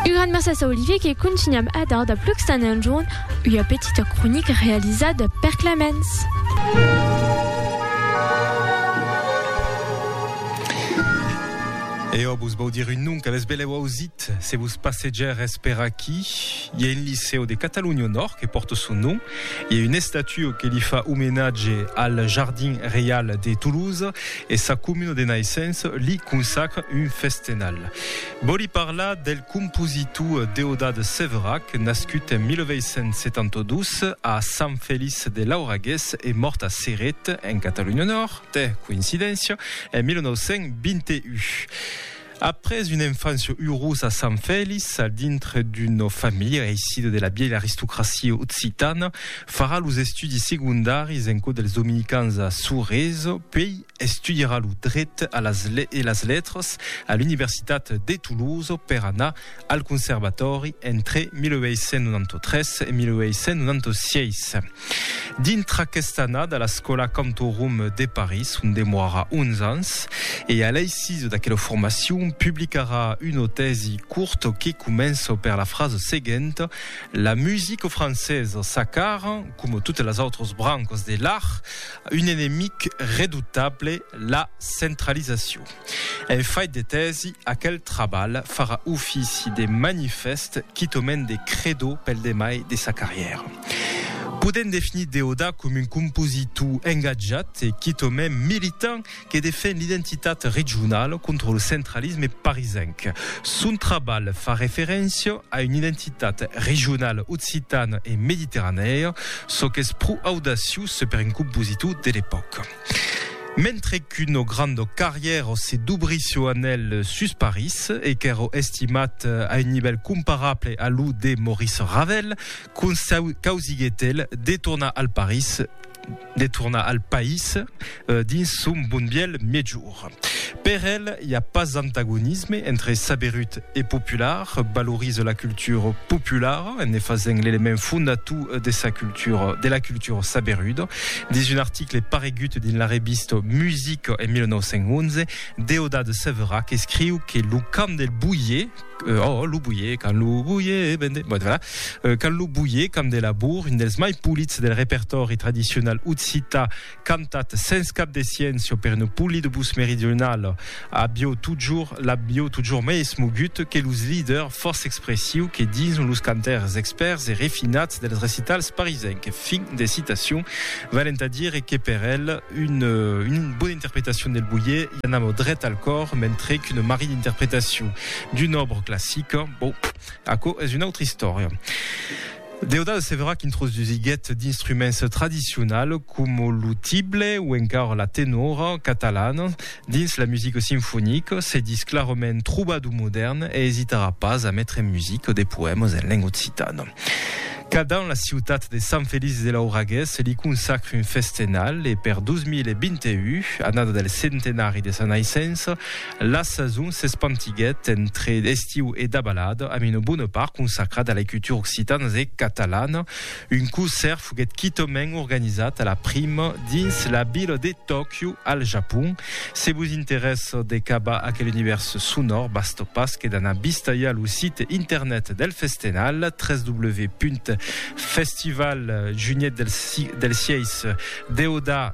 Un grand merci a Olivier que continuam a dar de plucs tant en jorn ua petita cronica realizada per Clemens. E ò vos vau dire un nom qu'avètz belèu ausit se vos passegères per aquí. I a un licèu de Catalonha au Nòrd que pòrta son nom. I a una estatua que li fa omenatge al Jardin Reial de Toulouse. e sa comuna de naissença li consacra un festenal. Vòli parlar del compositor Deodat Severac, nascut en 1872 a Sant Feliç de Lauragués e mòrt a Ceret, en Catalonha Nòrd, tè coïncidéncia, en 1921. Après una enfància urosa a Sant Fèlix, a dintre d'una familha aisida de la vièlha aristocracia occitana, farà los estudis segondaris en cò dels dominicans a Sorèse, puèi estudiarà lo dret e las letras a l'Universitat de Toulouse per anar al Conservatòri entre 1893 e 1896. Dintre aquesta annada a l'escòla Cantorum de París, on demoara 11 ans, e a l'eisise d'aquela formacion publicarà una tèsi curta que comença per la frasa seguenta, La musica francesa s'acara, coma totas las autras brancas de l'art, un enemic redoutable, la centralizacion. En fait de tèsi, aquel trabalh farà ofici de manifèst quitòment de credò pel demai de sa carrièra. Podèm definir Deodà com un compositor engatjat e quitòment militant que defen l'identitat regionala contra lo centralisme parisenc. Son trabalh fa referéncia a una identitat regionala occitana e mediterranèa, çò qu'es pro audaciós per un compositor de l'epòca. Mentre qu'uno grando carrièr o se dubri su anèl sus París, e qu'èro estimat a un nivèl comparable a lo de Maurice Ravel, causiguèt el de tornar al París, de tornar al país, dins son bon bièlh mièjor. Or, per el, i a pas antagonisme entre saberut e popular, valorise la cultura populara en ne fasent l'element fondator de sa cultura, de la cultura saberuda, dins un article paregut dins la revista Music en 1911, Deodat Severac escriu que lo cant del boier, oh, lo boier, quand lo boier, ben de, bon, voilà, quand lo boier, cant de labour, un dels mai polits del repertòri tradicional occità, Cantat sens cap de sciencio per no pulli de bus meridional, abieu totjor, l'abieu totjor mai esmogut que los leaders fòrça expressius que dins los cantaires expèrts e refinats dels recitals parisenc. Fin de citacion. Valent a dire que per el, un, un bona interpretacion del Boyer i anava dret al còr, mentre qu'una marrida interpretacion d'una òbra classica, bon, aquò es una autra istòria. Deodal Severac introsdusiguèt d'instruments tradicionals coma lo tible o encara la tenora catalana dins la musica sinfonica, se dis clarament trobador modèrn e esitarà pas a metre en musica de poèmas en lenga occitana. Cada an la ciutat de Sant Feliç de Lauragués li consacre un festenal e per 2021, annada del centenari de sa naissença, La sason s'espantiguèt entre estiu e dabalada amb una bona part consacrada a la cultura occitana e catalana. Un concèrt foguèt quitament organizat a la prima dins la vila de Tòquio, al Japon. Se vos interèssa de cavar aquel univèrs sonòr, basta pas que d'anar vistalhar lo site internet del festenal, www.festivaljunietdelsieis, deodà.